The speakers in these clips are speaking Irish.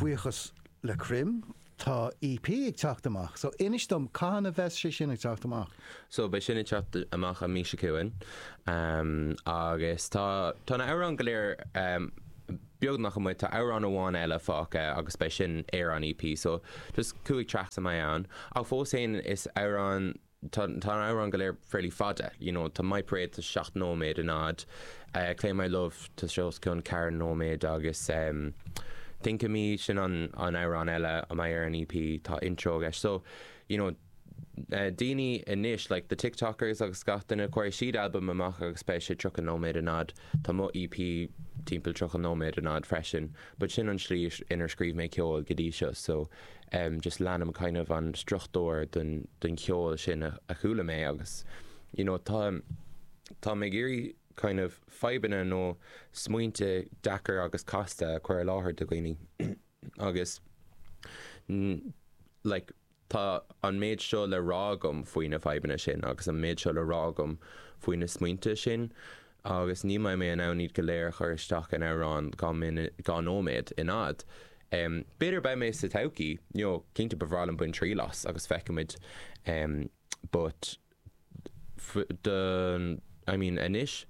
buíochas le Crom tá EP ag teacht amach so inis dom cathain a bheas sé sin ag teacht amach? So beidh sin ag teacht amach an mhí seo chugainn agus tá tá na amhráin go léir beagnach amuigh, tá amhrán amháin eile fágtha agus beidh sin ar an EP so just cúig tracks a mbeidh ann ach fós féin is amhrán Tá na hamhráin go léir fairly fada, you know, tá My Parade, tá sé seacht nóiméad in fhad, Claim My Love, tá sé os cionn ceathair nóiméad agus ehm Think of Me, sin an an amhrán eile a mbeidh ar an EP, tá intro leis. So, you know, eh daoine anois, like the TikTokers agus gach duine, cuirfidh siad albam amach agus beidh sé tríocha nóiméad in fhad, tá mo EP timpeall tríocha nóiméad in fhad freisin. but sin an tslí inar scríobh mé ceol go dtí seo so em just leanaim kind of an struchtúr den den cheol sin a a chuala mé agus you know tá táim ag iarraidh kind of fadhbanna nó smaointe deacair agus casta a chur i láthair do dhaoine agus mm like Tá an méid seo le rá agam faoi na fadhbanna sin agus an méid seo le rá agam faoi na smaointe sin agus ní mbeidh mé in ann iad go léir a chur isteach in amhrán dhá nóiméad in fhad. B'fhéidir beidh mé sa todhchaí, you know, cinnte ba bhreá liom bain triail as agus feicfimid but. the, I mean, anois,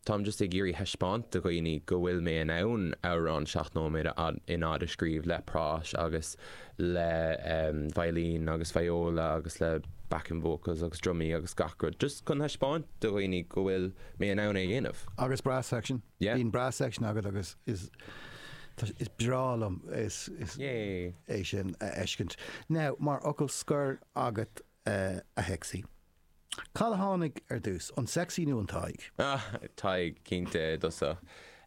táim just ag iarraidh thaispeáint do dhaoine go bhfuil mé in ann amhrán seacht nóiméad in fhad a scríobh le práis agus le veidhlín agus viola agus le backing vocals agus drumaí agus gach rud, just chun thaispeáint do dhaoine go bhfuil mé in ann é a dhéanamh. Agus brass section, bíonn brass section agat agus is breá liom é sin a fheiscint. Now, mar fhocal scoir agat, Eh, a Shexy. Cad a tháinig ar dtús, an Sexy nó an Tadhg? Ah, Tadhg, cinnte, i dtosach.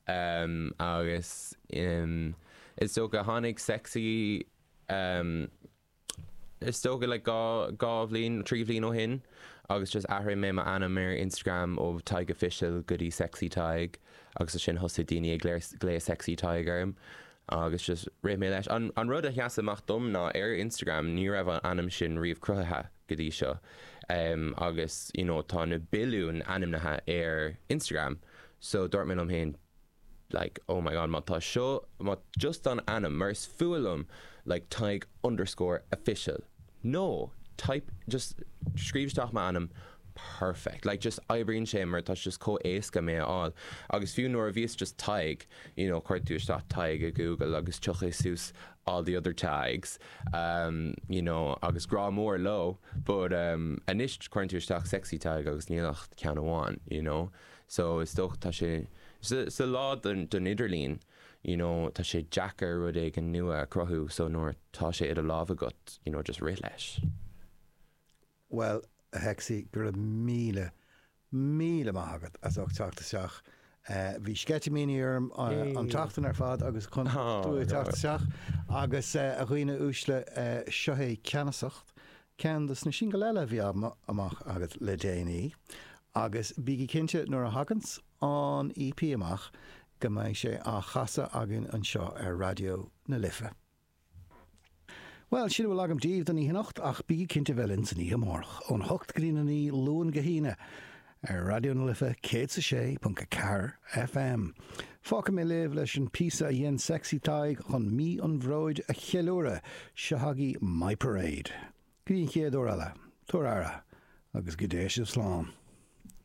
Ehm, agus ehm, is dócha tháinig Sexy ehm, is dócha le dhá bhliain, trí bhliain ó shin agus just athraigh mé m'ainm ar Instagram ó Tadhg Official go dtí Sexy Tadhg agus ansin thosaigh daoine ag glaoch Sexy Tadhg orm. Agus just rith mé leis. An rud a sheas amach dom ná ar Instagram ní raibh an ainm sin riamh cruthaithe go dtí seo. Agus you know tá na billiúin ainmnithe ar Instagram so dúirt mé liom féin like oh my god má tá seo, má just an ainm, mar is fuath liom like Tadhg underscore official. No, type, just, scríobh isteach m'ainm perfect, like, just, oibríonn sé mar tá sé just chomh éasca mé a fháil agus fiú nuair a bhí sé just Tadhg, you know, cuireann tú isteach Tadhg i Google agus tiocfaidh suas all the other Tadhgs, ehm, you know, agus grá mór leo but, ehm, anois cuireann tú isteach Sexy Tadhg agus níl ach ceann amháin, you know, so is dócha tá sé, sa lá don idirlíon, you know tá sé deacair rud éigin nua a chruthú so nuair atá sé i do lámh agat you know just rith leis. Bhuel, a Sexy, go raibh míle, míle maith agat as ucht teacht isteach. Bhí sceitimíní orm an tseachtain ar fad agus chun tú a teacht isteach agus a dhaoine uaisle seo é Ceannasacht, ceann dos na singil eile a bhí amach agat le déanaí agus bígí cinnte nuair a thaganns, an EP amach go mbeidh sé á chasadh againn anseo ar Raidió na Life. Bhuel, sin a bhfuil agam daoibh don oíche anocht, ach bígí cinnte bheith linn san oíche amárach, óna hocht go dtí na naoi, Luan go hAoine, ar Raidió na Life céad is a sé ponc a ceathair FM. Fágfaidh mé libh leis an píosa a dhein Sexy Tadhg chun Mí an Bhróid a cheiliúradh, seo agaí My Parade. Go dtí an chéad uair eile, tabhair aire, agus go dté sibh slán.